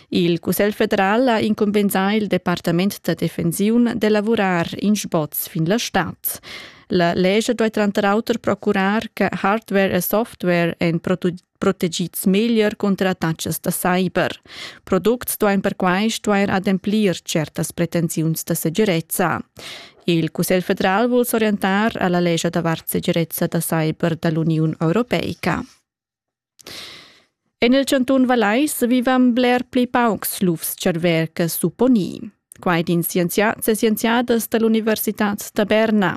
Il Cussegl federal ha incumbensà il departament da defensiun de lavurar in sboz fin la stad. La legge deve tranter auter procurar che hardware e software en protegids meglier contra attacks da cyber. Products duein perquai stuer ademplir certas pretensiuns da segirezza. Il Cussegl federal vuol s'orientar alla legge davart segirezza da cyber dall'Uniun Europeica. En il chantun Vallais vivan bler pli paucs lufs-tscharver che supponì. Quai din scienziads e scienziadas da l'Universitad da Berna.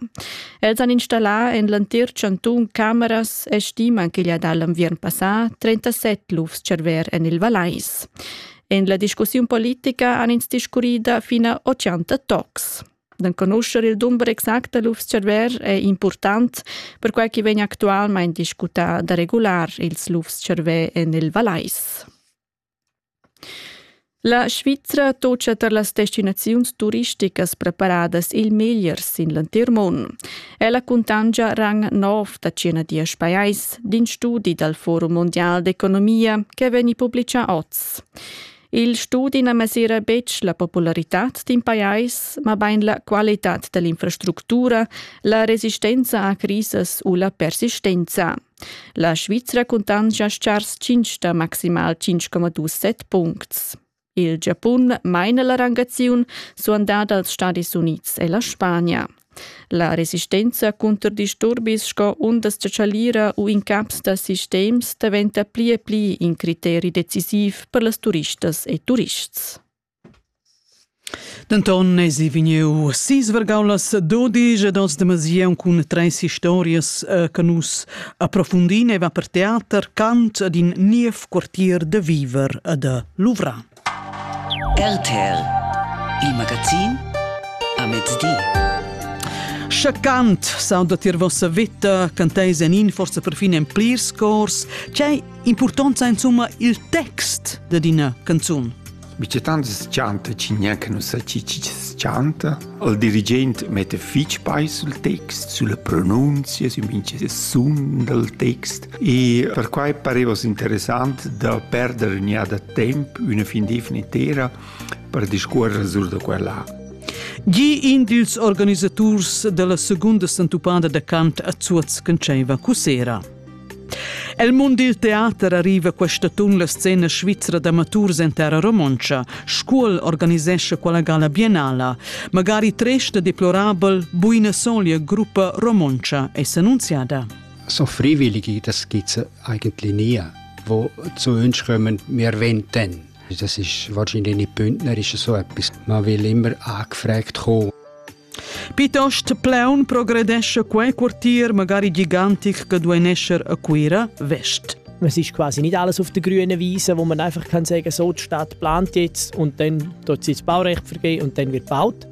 Els han installà en l'entir chantun cameras e stiman ch'igl ha dà l'enviern passà 37 lufs-tscharver en il Vallais. En la discussiun politica han ins discurrì da fina 80 tocs. D'enconuscher il dumber exact da lufs-tscharver è impurtant, perquai ch'i vegn actualmain discutà da regular ils lufs-tscharver en il Valais. La Svizra tocia tar las destinaziuns turisticas preparadas il meglier sin l'entir mund. Ella cuntangia rang nov da cinadias pajais, din studi dal Forum mondial d'economia che vegni publitgà oz. Il studi na mesira betg la popularitad d'in pajais, mabain la qualitad da l'infrastructura, la resistenza a crisas u la persistenza. La Svizra cuntanscha chars 5 da maximal 5,27 puncts. Il Giapun maina la rangaziun suandada als Stadis Unids e la Spagna. La resistenza cunter disturbis sco undas da chalira u incaps da sistems daventa pli e pli in criteri decisiv per las turistas e turists. Denton esi vegniu sisvergau las dodisch ed oz demasiaun cun treis historias eh, che nus approfundin eva per teater, cant ed in niev quartier da viver e da luvrar. RTL Il magazin a mezdi. Sche cant sauda tier vossa vita, canteis en in forza perfin en plirs cors, c'è importanza insomma il text da d'ina canzun? Mi c'è tanti scanta, ci neanche non sa ci ci scanta. Il dirigent metta fitg peis sul text, sulla pronunzia, sü mincha sun dal text e perquai pareva interessant da perder gnada temp üna fin d'eivna intera per discuorrer sur da quella. Gi in dils organisaturs della seconda sentupada da cant a Zuoz Conceva Cusera. El mund dil teater arriva quest'atun la scena svizra d'amaturs en terra romontscha. Scuol organisescha quella gala biennala. Magari tresta deplorabel buina solia gruppa romontscha è s'annunziada. So freiwillig, das geht eigentlich nie, wo zu uns kommen, wir wenden. Das ist wahrscheinlich nicht bündnerisch so etwas. Man will immer angefragt kommen. Pitost plaun progredesce quei quartier magari gigantic che duei nescher a Cuira West. Es ist quasi nicht alles auf der grünen Wiese, wo man einfach kann sagen, so die Stadt plant jetzt und dann tut sie das Baurecht vergeben und dann wird gebaut.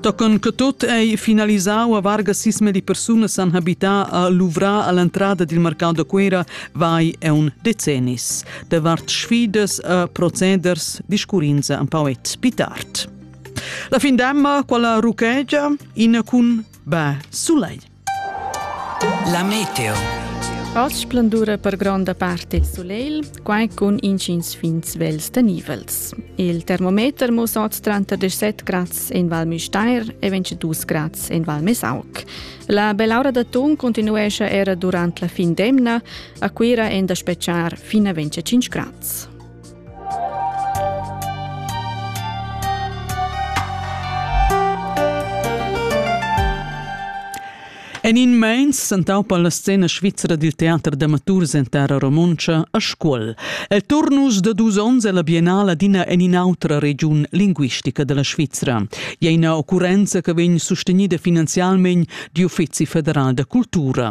Tochen che tot ei finalisau a varga sisme di persone san habità a Luvra all'entrata del mercato da Cuira vai è un decennis, de vart sfidas a proceders di scurinza un pauet pitart. La fin d'emma, quella ruchegia, in cun bè sulei. La meteo. Oz splendura per gronda parte il soleil, quai cun incins fin svels tenivels. Il termometer mussa oz 37 grads en Val Müstair e 22 grads en Val Mesauc. La bell'aura d'atun continuesce era durant la fin d'emna, a Cuira è da speciar fino a 25 grads. En in meins sentau per la scena svizra dil teater d'amaturs en terra romontscha a Scuol. El turnus da dus onns ella biennala d'ina en in'autra regiun linguistica della Svizra. E ina occurrenza che vegn sustenida finanzialment d'uffizi federal da cultura.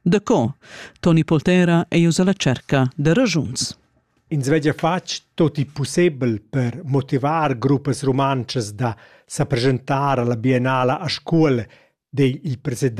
Daco? Toni Poltera ei uss alla cerca da ragiuns. Ins veglia fatg tot il possibel per motivar gruppas rumantschas da sa presentar alla biennala a scuola, di il president